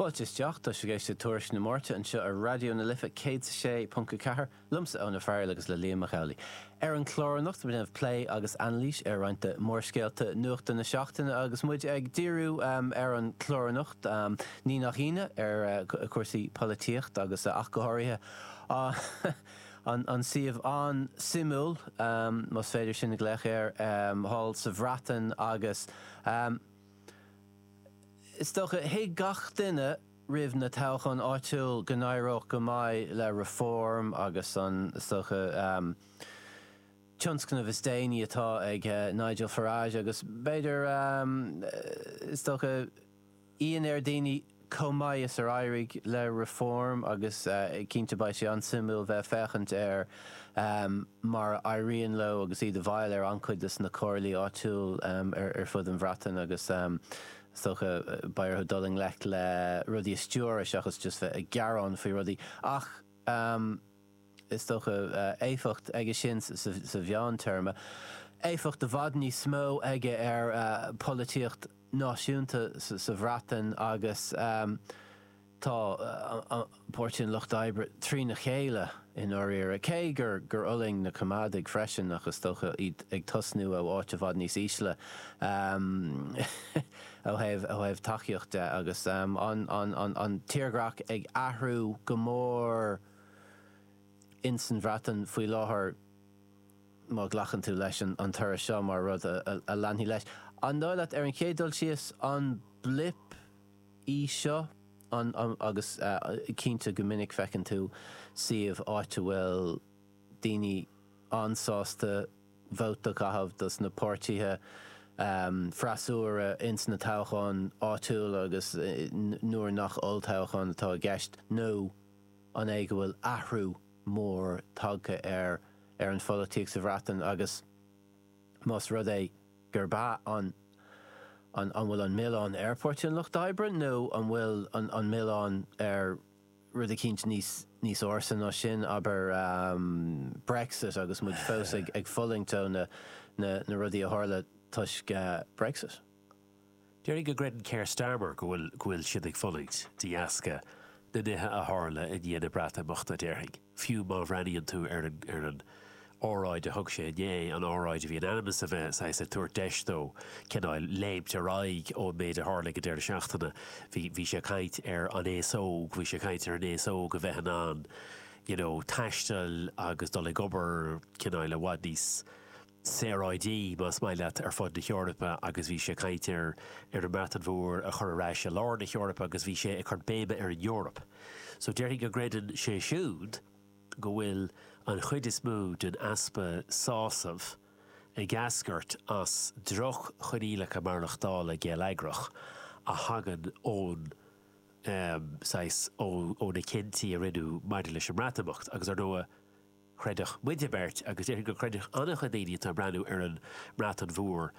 Fáilte isteach, tá sibh ag éisteacht le Tuairisc na Máirte anseo ar Raidió na Life 106.4, liomsa Eoin Ó Fearghail agus le Liam Mac Amhlaigh. Ar an chlár anocht ag déanamh plé agus anailís ar roinnt de mhórscéalta nuachta na seachtaine agus muid ag díriú ar an chlár anocht, ní nach ionadh, ar chúrsaí polaitíocht agus ach go háirithe an suíomh an-suimiúil, más féidir sin a ghlaoch air, thall sa Bhreatain agus. Is dócha, thuig gach duine roimh na toghcháin áitiúil go n-éireodh go maith le Reform agus an, is dócha, tionscnamh is déanaí atá ag Nigel Farage agus b'fhéidir, is dócha, ionadh ar dhaoine. Chomh maith is ar éirigh le Reform, agus cinnte beidh sé an-suimiúil bheith ag féachaint ar mar a éiríonn leo agus iad i bhfeighil ar an-chuid de na comhairlí áitiúil ar fud an Bhreatain agus is dócha beidh orthu dul i ngleic le rudaí a stiúradh seachas just bheith ag gearán faoi rudaí ach Is dócha éifeacht aige sin sa mheántéarma, éifeacht i bhfad níos mó aige ar pholaitíocht náisiúnta sa Bhreatain agus tá Páirtí an Lucht Oibre trína chéile i ndáiríre, cé gur fhulaing na Coimeádaigh freisin ach is dócha iad ag tosnú ó áit i bhfad níos ísle ó thaobh tacaíocht de agus an tírdhreach ag athrú go mór. ins an Bhreatain faoi láthair, má ghlacann tú leis an toradh seo mar rud a leanfaidh leis. An dóigh leat, ar an chéad dul síos, an blip í seo? An, agus cinnte go minic feiceann tú suíomh, áit a bhfuil daoine an-sásta vóta caitheamh dos na páirtíthe freasúra ins na toghcháin áitiúla agus nuair nach olltoghchán atá i gceist, nó. an é go bhfuil athrú mór tagtha ar ar an pholaitíocht sa Bhreatain agus más rud é gurb ea, an an an bhfuil an milleán ar Pháirtí an Lucht Oibre nó an bhfuil an an milleán ar rud eicínt níos níos ársa ná sin, abair, Brexit agus muid fós ag ag fulaingt ó na na na rudaí a tharla toisc Brexit? Déarfainn go gcreideann Keir Starmer go bhfuil, go bhfuil siad ag fulaingt de dheasca na nithe a tharla i ndiaidh na Breatimeachta, déarfainn, fiú má bhreathnaíonn tú ar an, ar an óráid a thug sé inné, an óráid a bhí in ainm is a bheith saghas ag tabhairt deis dó cineál léimt ar aghaidh ón méid a tharla ag an deireadh seachtaine, bhí, bhí sé ag caint ar an aos óg, bhí sé ag caint ar an aos óg a bheith in ann, you know, taisteal agus dul ag obair cineál i bhfad níos. saoráidí, más maith leat, ar fud na hEorpa agus bhí sé ag caint ar an mBreatain Mhór a chur ar ais i lár na hEorpa agus bhí sé ag cur béime ar an Eoraip. So déarfainn go gcreideann sé siúd go bhfuil an chuid is mó den easpa sásamh ag eascairt as droch-choinníollacha maireachtála geilleagrach a thagann ón, saghas, ó na cinntí a rinneadh maidir leis an mBreatimeacht agus, ar ndóigh, chreidfeadh muide an bheirt, agus déarfainn go gcreidfeadh an-chuid daoine atá ag breathnú ar an mBreatain Mhór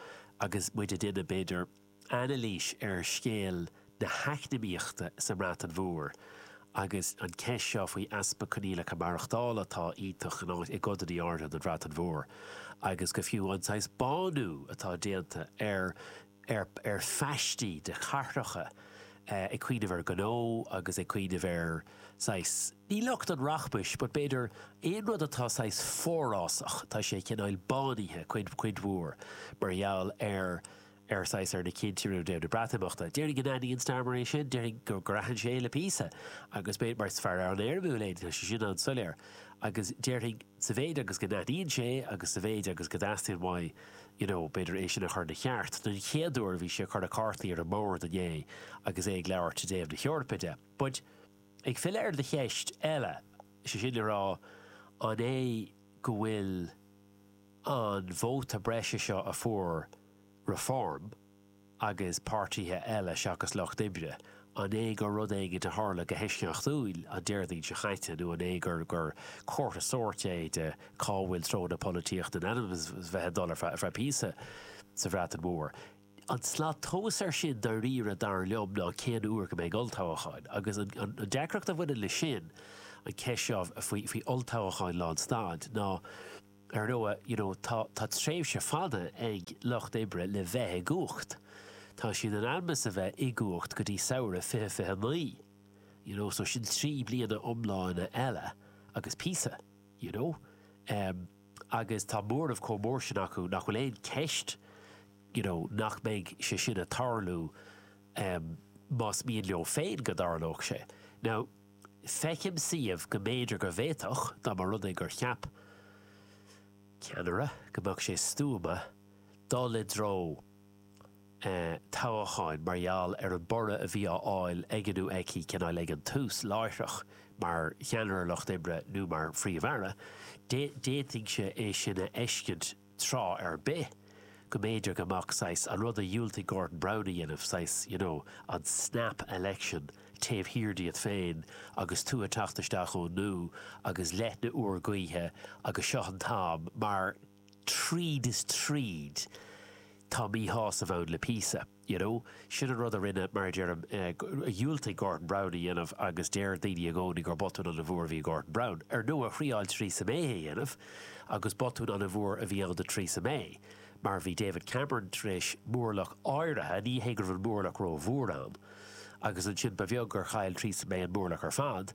agus muid ag déanamh, b'fhéidir, anailís ar scéal na heacnamaíochta sa mBreatain Mhór, agus an ceist seo faoi easpa coinníollacha maireachtála atá iontach i gcodanna áirithe den Bhreatain Mhór, agus go fiú an saghas bánú atá déanta ar. ar ar phaistí de chathracha ag cuimhneamh ar ghnó agus ag cuimhneamh ar saghas, ní lucht an rachmais, but b'fhéidir aon rud atá saghas forásach, tá sé cineáil bánaithe cuid cuid mhór mar gheall ar ar saghas ar na cinntí, ró-idé na Breatimeachta. Déarfainn go n-aithníonn Starmer é sin, déarfainn gur gur aithin sé é le píosa, agus b'fhéidir mar is fhear an-éirimiúil é, tá sé sin an-soiléir, agus déarfainn, sa mhéid agus go n-aithníonn sé agus sa mhéid agus go dteastaíonn uaidh you know b'fhéidir é sin a chur ina cheart. Den chéad uair bhí sé ag cur na cártaí ar an mbord inné agus é ag labhairt i dtaobh na hEorpa de. But ag filleadh ar do cheist eile, sé sin le rá an é go bhfuil an vóta breise seo a fuair Reform, agus páirtithe eile seachas Lucht Oibre, an é gur rud éigin a tharla go heisceachtúil an Déardaoin seo chaite nó an é gur gur comhartha sóirt é de cá bhfuil treo na polaitíochta in ainm is bheith ag dul ar feadh píosa sa Bhreatain Mhór? An tslat tomhas ar sin dairíre dar liom ná cén uair go mbeidh olltoghacháin, agus an deacracht a bhaineann le sin, an ceist seo faoi olltoghacháin lánstad, ná, Ar ndóigh, you know, tá tréimhse fada ag Lucht Oibre le bheith i gcumhacht. Tá siad in ainm 's a bheith i gcumhacht go dtí samhradh fiche fiche naoi, you know, so sin trí bliana iomlána eile agus píosa, you know. Em, agus tá móramh chomh mór sin acu nach bhfuil aon cheist, you know, nach mbeidh sé sin a' tarlú, em, más mian leo féin go dtarlódh sé. Now. Feicim suíomh go mb'fhéidir go bhféadfadh, dá mba rud é gur cheap ceannaire go mbeadh sé stuama dul i dtreo toghacháin mar gheall ar an borradh a bhí á fháil aige nó aici, cineál ag an tús, láithreach, mar cheannaire Lucht Oibre nó mar Phríomh-Aire, d'fhéadfainnse é sin a fheiscint. tráth ar bith, go mb'fhéidir go mbeadh saghas, an rud a dhiúltaigh Gordon Brown a dhéanamh, saghas, you know, an snap election taobh thiar díot féin agus tú ag teacht isteach ón nua agus leoithne úr gaoithe agus seo an t-am, mar tríd is tríd, tá míshásamh ann le píosa. You know, sin an rud a rinne, mar a deirim, a dhiúltaigh Gordon Brown a dhéanamh agus deir daoine i gcónaí gur botún an-mhór a bhí ag Gordon Brown. Ar ndóigh, thriáil Theresa May é a dhéanamh agus botún an-mhór a bhí ann do Theresa May mar bhí David Cameron tar éis mórlach áirithe, ní hé go raibh an mórlach ró-mhór ann, agus ansin ba bheag gur chaill Theresa May an mórlach ar fad.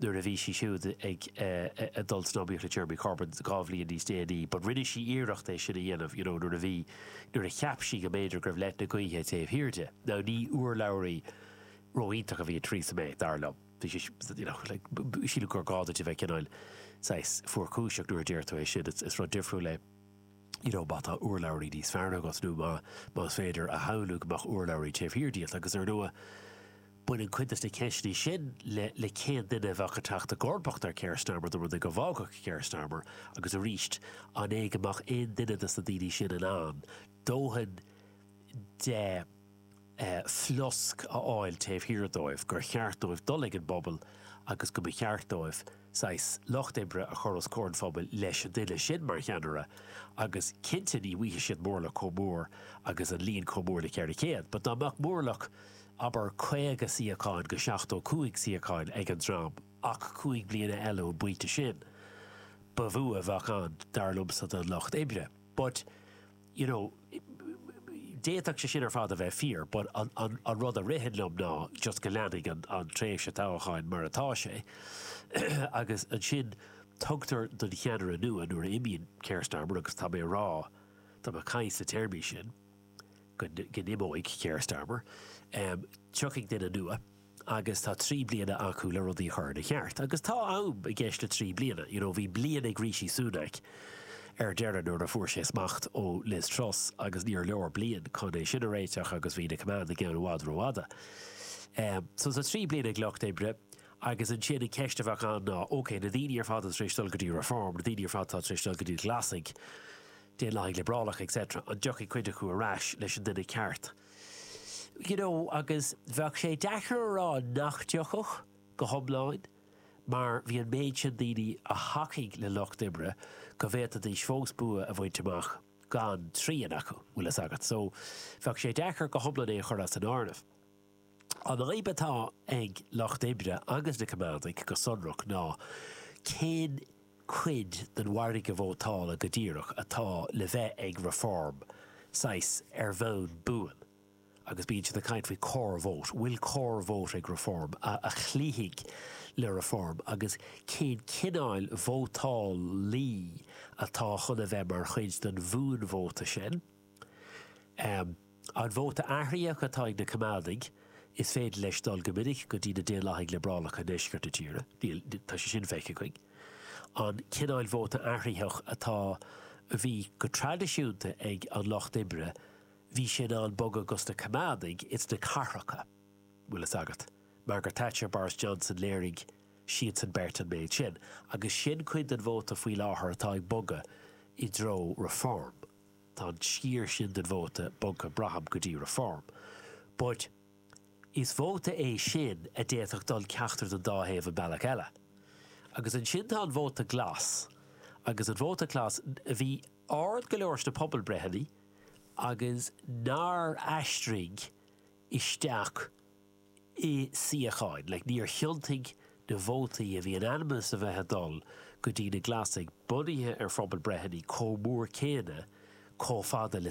nuair a bhí sí siúd ag dul san iomaíocht le Jeremy Corbyn dhá bhliain níos déanaí but rinne sí iarracht é sin a dhéanamh you know nuair a bhí, nuair a cheap sí go mb'fhéidir go raibh leoithne gaoithe taobh thiar di. Now ní urlabhraí ró-iontach a bhí in Theresa May, dar liom. Bhí sí you know like sílim gur gá duit a bheith cineál saghas fuarchúiseach nuair a deir tú é sin, it's, it's rud difriúil é. you know má tá urlabhraí níos fearr agat nó más féidir a shamhlú go mbeadh urlabhraí taobh thiar díot agus ar ndóigh baineann cuid de na ceisteanna sin le le cén duine a bheadh ag teacht i gcomharbacht ar Keir Starmer dá mba rud é go bhfágfadh Keir Starmer agus arís an é go mbeadh aon duine de na daoine sin in ann dóthain de flosc a fháil taobh thiar dóibh, gur cheart dóibh dul ag an bpobal agus go mba cheart dóibh saghas lucht oibre a chur os comhair an phobail leis an duine sin mar cheannaire agus cinnte ní bhfuighfidh siad mórlach chomh mór agus an líon chomh mór le 400 but dá mbeadh mórlach abair 50 suíocháin go 75 suíocháin ag an dream ach cúig bliana eile ón bpointe sin ba bhua a bheadh ann dar liomsa don lucht oibre but you know, d'fhéadfadh sé sin ar fad a bheith fíor but an rud a ritheann liom ná just go leanfaidh an tréimhse toghcháin mar atá sé agus ansin tugtar don cheannaire nua, nuair a imíonn Keir Starmer agus tá mé ag rá, tá mé ag caint sna téarmaí sin, go n-imeoidh Keir Starmer, tiocfaidh duine nua. agus tá trí bliana acu le rudaí a chur ina cheart, agus tá am i gceist le trí bliana, you know bhí bliain ag Rishi Sunak ar deireadh nuair a fuair sé smacht ó Liz Truss agus níor leor bliain chun é sin a réiteach agus bhí na coimeádaigh ann i bhfad rófhada. Ehm so tá trí bliana ag Lucht Oibre agus ansin an ceist a bheadh ann ná ok na daoine ar fad atá tar éis dul go dtí Reform, na daoine ar fad atá tar éis dul go dtí na Glasaigh, Daonlathaigh Liobrálacha etc, an dtiocfaidh cuid acu ar ais leis an nduine ceart? You know, agus bheadh sé deacair a rá nach dtiocfadh, go hiomlán, mar bhí an méid sin daoine a thacaigh le Lucht Oibre go bhféadfaidís fós bua a bhaint amach gan trian acu, bhfuil fhios agat. So, bheadh sé deacair go hiomlán é a chur as an áireamh. An fhadhb atá ag Lucht Oibre agus na Coimeádaigh go sonrach ná cén. cuid den mhargadh vótála go díreach atá le bheith ag Reform, saghas ar bhonn buan, agus bíonn siad ag caint faoi core vote, bhfuil core vote ag Reform a chloífidh le Reform agus cén cineáil vótálaí atá chun a bheith mar chuid den bhuanvóta sin? An vóta athraitheach atá ag na Coimeádaigh, is féidir leis dul go minic go dtí na Daonlathaigh Liobrálacha i ndeisceart na tíre, tá sé sin feicthe againn. An cineál vóta athraitheach atá, a bhí go traidisiúnta ag an Lucht Oibre, bhí sé in ann bogadh go dtí na Coimeádaigh ins na cathracha, bhfuil fhios agat. Margaret Thatcher, Boris Johnson, léirigh siadsan beirt an méid sin. Agus sin cuid den vóta faoi láthair atá ag bogadh i dtreo Reform. Tá an sciar sin den vóta bogtha braithim go dtí Reform, but is vóta é sin a d'fhéadfadh dul ceachtar den dá thaobh an bealach eile. Agus ansin tá an vóta glas, agus an vóta glas a bhí ard go leor sna pobalbreitheanna agus nár aistrigh isteach, i suíocháin, like níor thiontaigh na vótaí a bhí in ainm is a bheith ag dul go dtí na Glasaigh, bunaithe ar phobalbreitheanna, chomh mór céanna, chomh fada le.